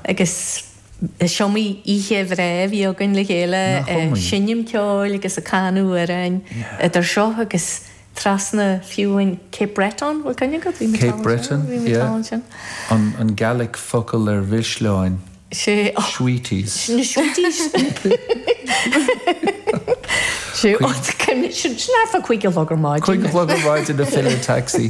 Agus is iomaí oíche bhreá a bhí againn le chéile ag seinm ceoil agus ag canadh amhráin, idir seo agus trasna fiú in Cape Breton, bhfuil cuimhne agat? Bhí muid ann sin. Cape Breton, yeah. An Gaelic focal ar mhisleáin, sweeties. Na sweeties. Sin neamh a cúig a chlog ar maidin. Cúig a chlog ar maidin ag filleadh taxi.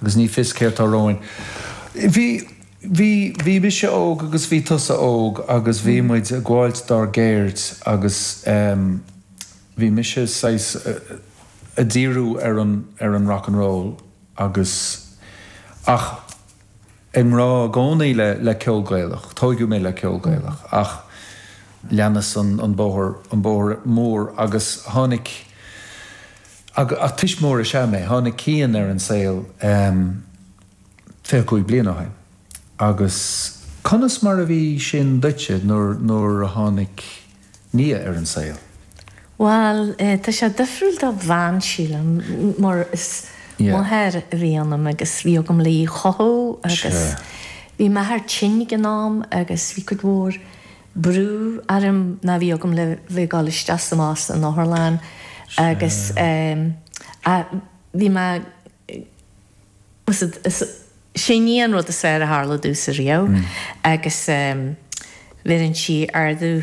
Agus ní fios céard tá romhainn. Bhí, bhí, bhí mise óg agus bhí tusa óg agus bhí muid ag gabháilt dár gceird agus ehm, bhí mise saghas a' díriú ar an, ar an rock and roll agus, ach. I ngrá i gcónaí le le ceol Gaelach. Tóigeadh mé le ceol Gaelach ach leanas an an bóthar an bóthar mór agus tháinig ach tuismitheoir is ea mé tháinig Cian ar an saol ehm fiche cúig bliain ó shin agus conas mar a bhí sin duitse nuair nuair a tháinig Nia ar an saol? Bhal, tá sé difriúil do bhean, sílim, mar is máthair a bhí ionam agus bhí agam le í a chothú agus bhí m'athair tinn ag an am agus bhí cuid mhór brú orm mar bhí agam le bheith ag dul isteach is amach san otharlann agus bhí mé Is sin í an rud is fearr a tharla domhsa riamh agus bheireann sí ardú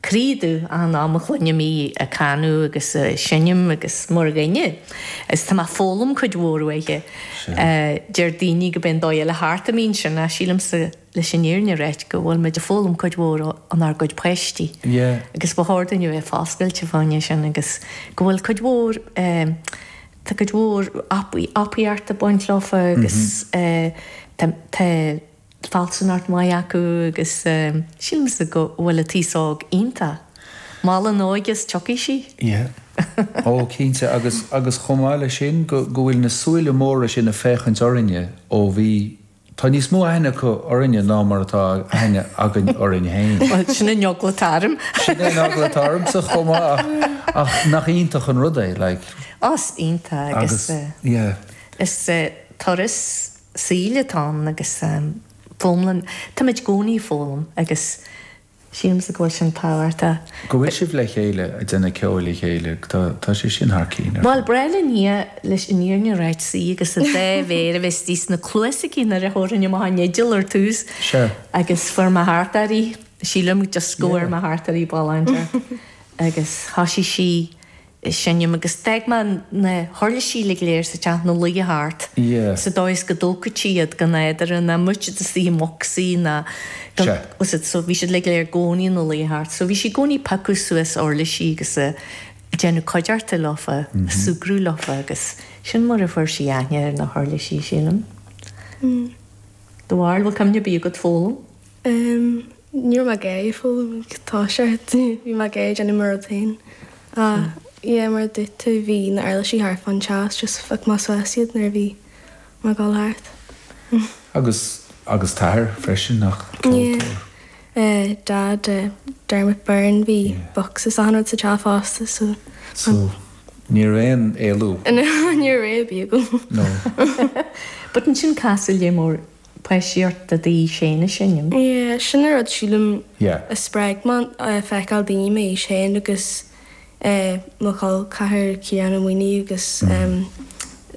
croí domh achan am a chluinim í ag canadh agus ag seinm agus mar dhuine is tá mé ag foghlaim cuid mhór uaithe. Deir daoine go mbíonn an dóigh eile thart a mbíonn sin ach sílimsa leis an fhírinne a ráit go bhfuil muid ag foghlaim cuid mhór ónár gcuid páistí agus ba chóir dúinn a bheith foscailte fá dtaobh de sin agus go bhfuil cuid mhór tá cuid mhór ábaltacht ag baint leofa agus tá fealsúnacht mhaith acu agus sílimse go bhfuil an t-aos óg iontach. Mol an óige is tiocfaidh sí. Yeah. Ó, cinnte agus chomh maith le sin go bhfuil na súile móra sin ag féachaint orainne ó bhí Tá níos mó aithne acu orainne ná mar atá aithne againn orainn féin. Bhuel, sin an eagla atá orm! Sin é an eagla atá ormsa chomh maith ach nach iontach an rud é like. Ó, is iontach agus yeah. Is turas saoil atá ann agus foghlaim, táimid i gcónaí ag foghlaim agus. Sílimse go bhfuil sin tábhachtach. Go bhfuil sibh le chéile ag déanamh ceoil le chéile tá sé sin thar cinn ar fad. Bhuel, ba ghnách le Nia leis an fhírinne a ráit suí agus a dhá méar a bheith istigh sna cluasa aici nuair a thabharfainn amach an fhidil ar tús agus fuair mé thart air í, sílim, just go bhfuair mé thart air í, bhal, áit éigin agus thoisigh sí. seinm agus d'fhág mé na huirlisí uilig go léir sa teach ina luí thart sa dóigh is go dtógfadh sí iad gan fheadar ná muid de suí i mbocsaí ná gan úsáid so bhí siad uilig go léir i gcónaí ina luí thart so bhí sí i gcónaí ag piocadh suas uirlisí agus ag déanamh cuideachta leofa ag súgradh leofa agus sin mar a fuair sí aithne ar na huirlisí sílim. Dá bharr bhfuil cuimhne ar bith agat foghlaim? Ní raibh mé ag foghlaim like tá sé bhí mé ag déanamh mo rud féin a yeah mar a dúirt tú bhí na huirlisí thart fán teach just phioc mé suas iad nuair a bhí mé ag gabháil thart. Agus agus t'athair freisin nach ceoltóir? Yeah eh Dad eh Dermot Byrne bhí bocsa is achan rud sa teach fosta so So ní raibh aon éalú? No ní raibh aon éalú ar bith agam. No. But ansin casadh lear mór páistí ort de d'aois féin ag seinm. Yeah, sin an rud sílim Yeah. a spreag mé, feiceáil daoine m'aois féin agus eh, mo chol ceathar Ciarán Ó Maonaigh agus em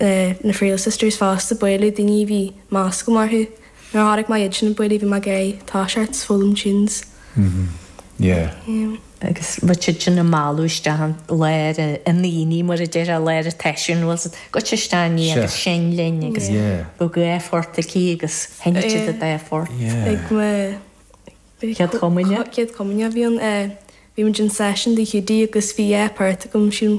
eh, na Friel Sisters fosta, ag bualadh daoine a bhí meas agam orthu. Nuair a chonaic mé iad sin ag bualadh bhí mé ag iarraidh tá a fhios agat, foghlaim tunes. Mh yeah. Agus bhí siad sin ag mealladh isteach i lár na ndaoine mar a déarfá i lár an tseisiúin bhuel goitse isteach a Nia agus seinn linn agus bhí dhá phort aici agus sheinn siad an dá phort. Ag mo chéad chomaoineach. Céad chomaoineach a bhí ann eh bhí muid in session tigh Hiúdaí agus bhí dhá phort agam sin